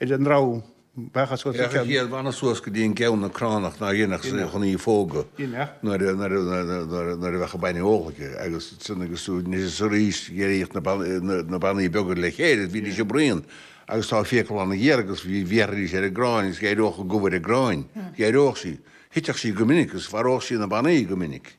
ar an dtreabh bheadh as ucht a ceann. Bhíodh an banbh suas go dtí an gceann na cránach ná dhéanfadh sé chun í a phógadh nuair a bheadh an bainne ólta aige agus sin agus anois is arís d'éiríodh na banbhaí beaga le chéile, bhídís ag bruíon agus tá fiacla ana-ghéar agus bhéarfaidís ar an gcráin agus éireodh an gomh ar an gcráin, éireodh sí, thitfeadh sí go minic agus mharódh sí na banbhaí go minic.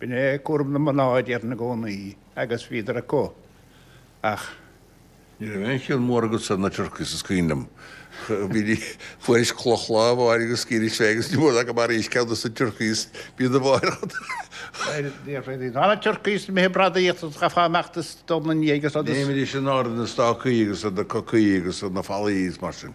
B'in é cúram na mná a deir na gcónaí agus bhíodar acu ach. Ní raibh aon chion mór agatsa ar na turkeys is cuimhin liom. Fuairis cloch lá áirithe is chuiris féin agus ní mór ná gur mharaís ceann de na turkeys bia do bháire chun. Níor féidir dá na turkeys imithe ag bradaíocht a ghabhfá amach de stón ina ndiaidh agus. D'imídís in airde ar na stácaí agus na cocaí agus na fallaí agus mar sin.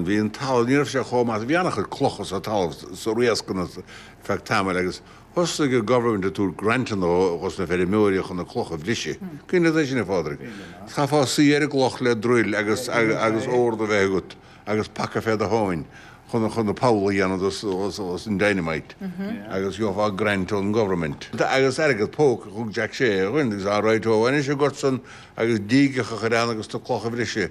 Bhí an talamh, ní raibh sé chomh maith, bhí an-chuid clocha sa talamh sna riascanna ar feadh tamaill agus thosnaigh an Government ag tabhairt grants dhos na feirmeoirí chun na clocha a bhriseadh. Cuimhin leat é sin a Phádraig? Chaithfeá suí ar an gcloch le druil agus, agus, agus ord a bheith agat agus paca fé do thóin chun, chun an poll a dhéanamh dhos, dhos, dhos an dynamite agus gheofá grant ón nGovernment agus airgead póca, thug Jack sé dhúinn agus, alright ó, anois a gort san agus dígeacha a chur ann agus na clocha a bhriseadh.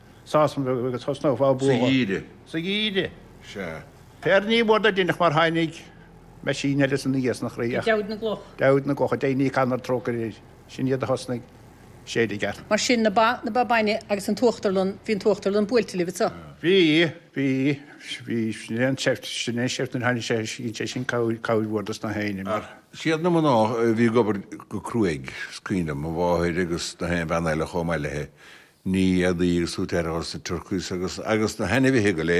Seasamh agus tosnófá ag bualadh. Sa gheimhreadh. Sa gheimhreadh. Sea. Fear ní mór do dhinseach mar tháinig meaisín eile san aer sna chroí ach. Deabhóid na gCloch. Deabhóid na gCloch go ndéana Dia trócaire air. Sin iad a thosnaigh ag séideadh i gceart. Mar sin, na ba, na ba bainne agus an t-uachtarlann, bhí an t-uachtarlann buailte libh, anseo. Bhí, bhí, bhí, sin é an tseift, sin é an tseift nuair a tháinig sé, dhein sé sin cabhair, cabhair mhór dos na héinne mar. Ach siad na mná a bhí ag obair go cruaidh, is cuimhin liom, mo mháthair agus na haon bhean eile chomh maith léithi. Ní fhéadfaí agus tú ag faire orthu sa tSiorcas agus agus na hainmhithe go léir.